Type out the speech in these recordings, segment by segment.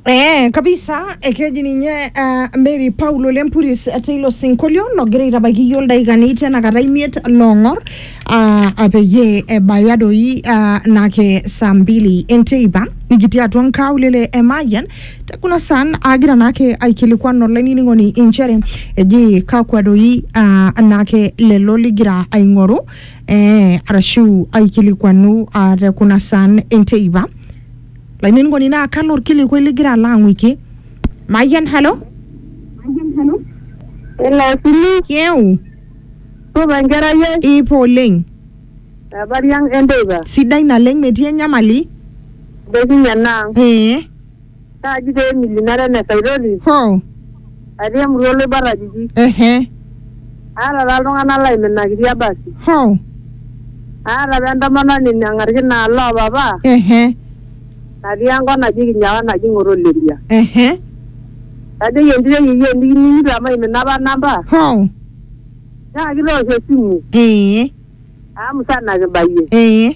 Eh, kabisa ekeji ninye uh, Mary Paulo Lempuris teilo sinkolio logira aitabaiki iyiook ildaikani tenakata imiet loong'or uh, peyie ebaya doi uh, nake saa mbili enteipa nikitii atua nkaulele e Mayian te kuna saan agira naake aikilikuan olainining'oni inchere eji kakwa doi uh, naake lelo ligira aing'oru eh, arashu aikilikuanu ah, te kuna saan enteipa lainining'oni naa kalo orkilikuai ligira alo ang'uiki mayian halo Elasili, yeu supa enkerai ai, ipo oleng habari ang enteipa, sidai naleng metii enyamali dokinye enaang. ee Naaji pee emilinare ene saitoti Hoo. atii emurua oloibor ajiji. Ehe. Aata taa iltung'ana laiminakitia basi. Hoo. Aata apa entomononi nang'arki naa loo papa Ehe. natii enkop naji Kinyawa naji Ng'otoleria. Ehe. Najoki entito e yieyio enikining'ito amu aimina apa namba Hoo. nyaaki toosho esimu Ee. amu musana kibayie. Ee.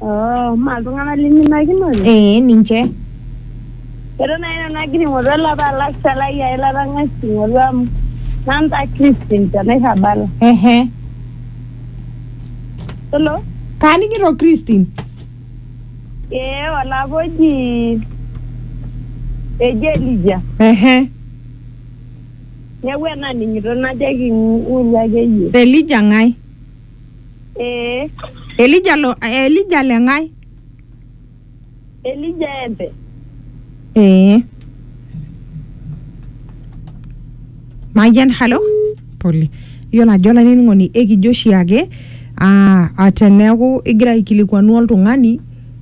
Oh, maa iltung'anak liminakinoyu? Ee, ninche. Eton nai nanu agira aing'oru olapa alaksa lai ai latang'asa aing'oru amu nanta Christine te Nairrabala. Ehe. Hello? Kaaning'ito Christine. Ee olapa oji eji Elija. Ehe. Neeku enaning'ito najoki ng'oru akeyie. Elija ng'ae? Ee. Elija lo Elija le ng'ae? Elija empe. Ee. Mayian halo. Pole. Iyiolo ajo olainining'oni ekijo oshiake aa teneeku igira aikilikuanu oltung'ani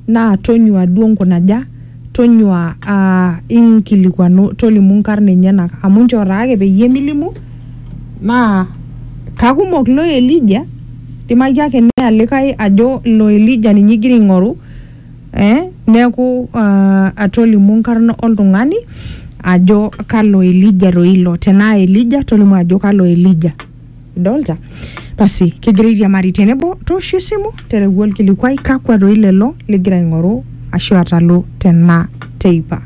naa tonyua duo nkunaja, tonyua uh, inkilikuanu tolimu nkarn enyenak amu nchoo taake peyie milimu naa kakumok lo Elija dimaki ake neya likae ajo lo Elija ninye igira aing'oru eh, neeku uh, tolimu nkarn oltung'ani ajo kalo Elija toi ilo tenaa Elija tolimu ajo kalo Elija. idolta basi kigira airiamari tenebo tooshu esimu tereu olkilikuai kakwa doi lelo ligira aing'oru ashu atalu tena teipa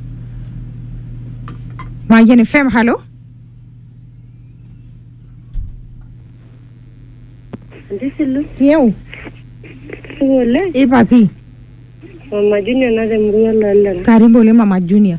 Mayian FM halo Ntisilu, yeu supa oleng. ipa pii Mama Junior naata emurua Lolera. karibu oleng mama junior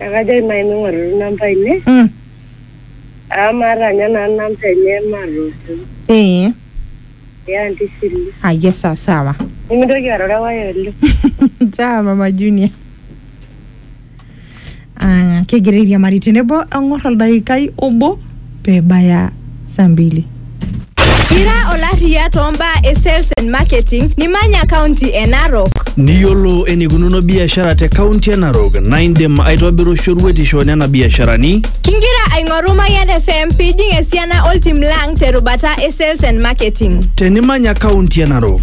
Ekajo aimae ming'oru namba ine Mm. amu maata ninye naa namba enye maatoosho Ee. ya anti Shili. Ayia saa sawa. Nimintoki arorewai oleng. Sawa mama Junior. Ah, kegira airiamari tenebo eng'or oldaikai obo. pebaya saa mbili. Ira olarriya too mbaa e sales and marketing nimanya kaunti e Narok? Niyiolo eneikununo biashara te kaunti e Narok naa indim aitobiru shoruetisho nena biasharani. Kingira aing'oru Mayian FM pijing esiana oltim lang terubata e sales and marketing. Tenimanya kaunti e Narok.